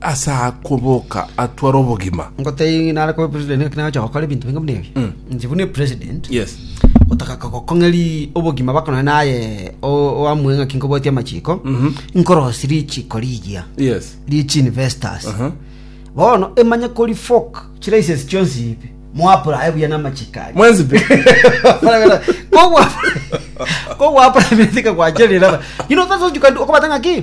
Ase akoboka atware obogima. Ngotebi ng'a nare koba epresident ngaki nagocha gokora ebinto binge buna ebi. Inche buna epresident Yes. otaka kogokong'eri obogima bako nonye naye o- oamue ng'aki nkobwatia amachiko nkorosi richiko rigiya Yes. richi investors Aha. bono emanye kori folk chilices chionsi ibe moapurae buya namachiko aye Mwenzi pe. kogwa kogwa prime minister kagwacherera you know that's what you can do okobata ng'aki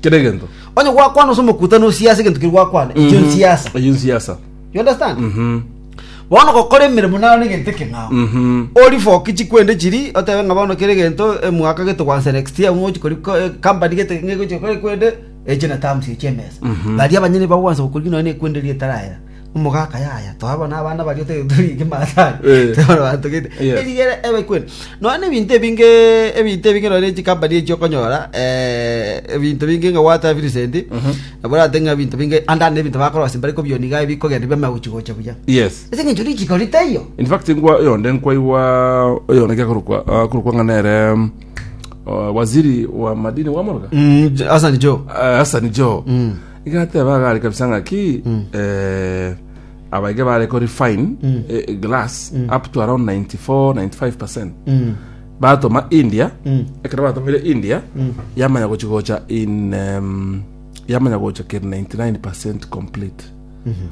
kera egento onye gwakwana ase omokuta nosiasa egento keri gwakwana ekio nsiasa eyo nsiasa you understand Mhm. bono gokora emeremo nayo na egento ekeng'ao Mhm. ori foki chikwende chiri otebe ng'a bono kere egento emwaka gete gwansa next year ng'ochi kori ko- eh, company gete ng'egochi gokora ekwende eche na terms echi emesa baria abanyene bagwansa gokori nonya na ekwende riria etarayera Omogaka yaya twaba nabana baria ote tori kimasai Eh. tore batogete Yes. erigere ebe kweli nonya na ebinto ebinge ebinto ebinge nonya ne chikampani echi okonyora eh, ebinto binge ng'a gwateba Vincent Mhm. nabo orate ng'a ebinto binge ande ande ebinto bakorosia mbare kobioni iga bikogenda biamagochigocha buya yes ase eng'encho richiko ritaiyo in fact ngwa oyonde nkwaigwa oyonde kekorokwa akorokwa ng'a nere mm, uh, waziri wa madini wamoroga Hassan Joe Eh, hasani jo Igateeba agare kabisa ng'a ki eh, abaige bare ko refine eh, glass up to around 94 95% batoma india ekero batomire india yamanya gochi gocha in em, yamanya gocha keri 99% complete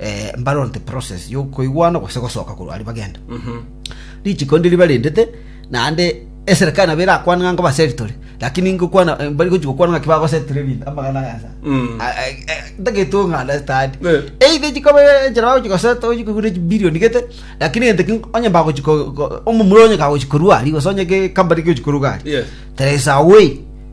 eh, mbarorete process yokoigwana gose gosoka korwa ari bagenda richiko ndiri barendete naende eserikali nabo erakwana ng'a ngobaseritore lakini ngokwana eh, bari gochi gokwana ng'aki bagosetire ebinto amagana gasa Mm. ntageto ng'andastadi Eh. eithe chikobe enchera bagochi goseta ochi kogura echibilioni gete lakini egento ki onye mbagochi ko- ko- omomura onye kagochi korwa ari gose onye ge- company gegochi koruga ari Yes. there is a way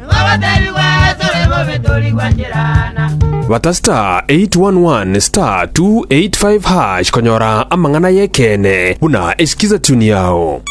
Twagotebigwa tore bobe tori gwancherana. Bata *811 *285# konyora amang'ana y'ekeene buna eskiza tune yao.